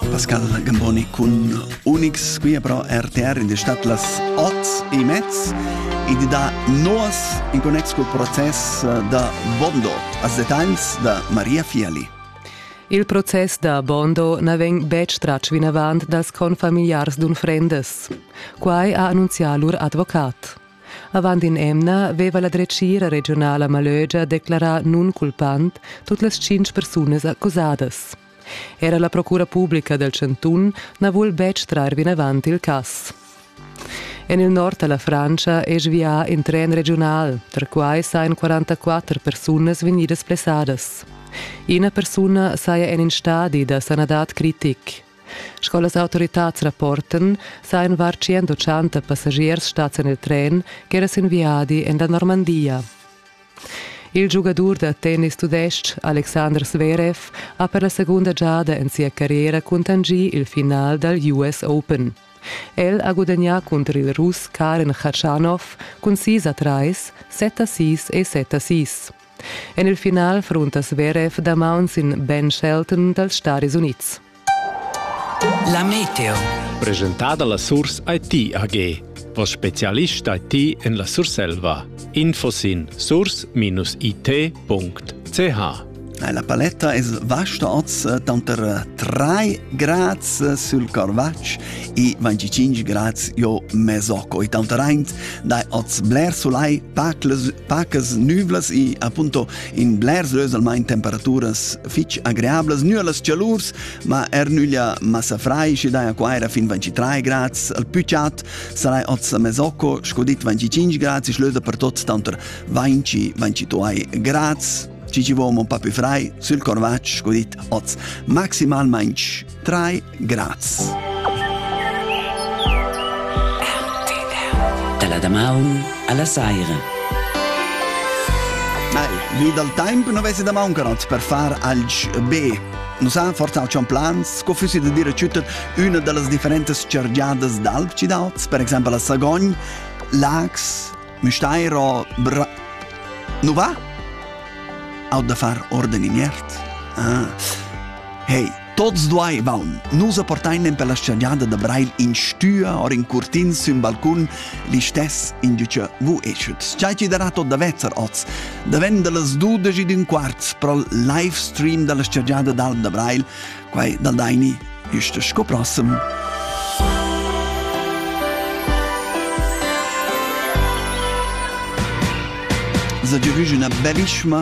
Pascal Gamboni cun Unix qui però RTR in destat las ots e mezz ed da nos in connex col process da Bondo as detalls da Maria Fiali. Il process da Bondo na vegn betg tratg vinavant dals confamiliars d'unfrendas. Quai ha annunzià lur advocat. Avant in'emna veva la dretgira regionala Malögia declarà nunculpant tut las tschintg persunas accusadas. Era la procura publica dal chantun na vul betg trar vinavant il cass. En il nord da la Frantscha è svià in tren regiunal. Perquai sajan 44 persunas vegnidas blessadas. Ina persuna saja en in stadi da sanadad critic. Sco las autoritads rapportan, sajan var 180 passagiers stads en il tren ch'era sin viadi en la Normandia. Il giugadur da tennis tudestg Alexander Zverev ha per la secunda giada en sia carriera cuntanschì il final dal US Open. El ha gudagnà cunter il Russ Karen Khachanov cun 6 a 3, 7 a 6 e 7 a 6. En il final frunta Zverev damaun sin Ben Shelton dals Staris Unids. La meteo. Presentada la Surs IT AG. Vos specialist IT en la Surselva. Info sin surs-it.ch La paletta es vasta oz eh, tanter 3 eh, grads eh, sul Carvatsch e 25 grads jo Mesocco. E tanter aint dai oz bler solai, pacles, pacas nüvlas e appunto in blers ös almain temperaturas fich agreablas, nua las chalurs, ma er nüglia massa frai, daja qua era fin 23 grads, al pü chat sarai oz a Mesocco, sco dit 25 grads, ich löse per tot tanter 20-22 grads, ci ci vo un po' più frai, sul corvaccio, sco dit, oz maximalmente 3 Graz. Dalla damaun alla saira. Nein, wie dal temp non avessi da mancanot per far alch be. Nus han forzà schon plans, sco fussi da dire tschüttet üna da las differentas chargiadas d'alp cidauts, per exempel a Sagogn, Lax, Müstair o Bra... Nu va? Au da far orden in iert? Ah. Hey, Tots duaivan nus appartain per la schagnada da Breil in stüa or in curtin sün balcun, listess indücha vu eschet. Schai chi darà tot da vezzer oz, daven da las dudesch ed ün quart pro live stream da la schagnada d'Alm da Breil, quai dal Daini güsta sco prossem. za giavüsch üna bellissima